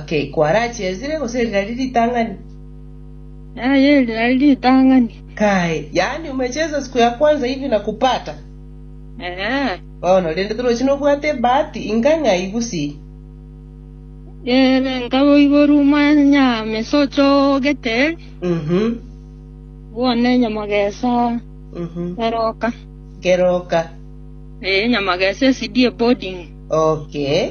Okay, kwarachiesire gose eri nari ritang'ani? Aye, eri nari ritang'ani. Kae, yaani umecheza siku ya kwanza hivi na kupata? Ee. Bono, rende toroche nobwate ebahati inga ng'ai gusii? Ee, nka boiborwa omwanya mesa ochogete eri, Mhm, bono enyamagesa mhm. eroka. Keroka. Ee, enyamagesa esidie boarding. Okay.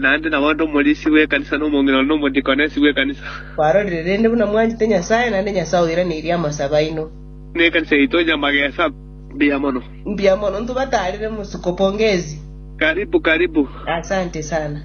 Naende nabo ande omorisia bw'ekanisa, na omong'ina one, na omodikonesi bw'ekanisa. Kwarorire rende buna mwanchete Nyasae, naende Nyasae oiraneirie amasabo aino. Nekanisa yaito onye amagesa, mbuya mono. Mbuya mono, ntubatarire mosiko, pongezi. Karibu, karibu. Asante sana.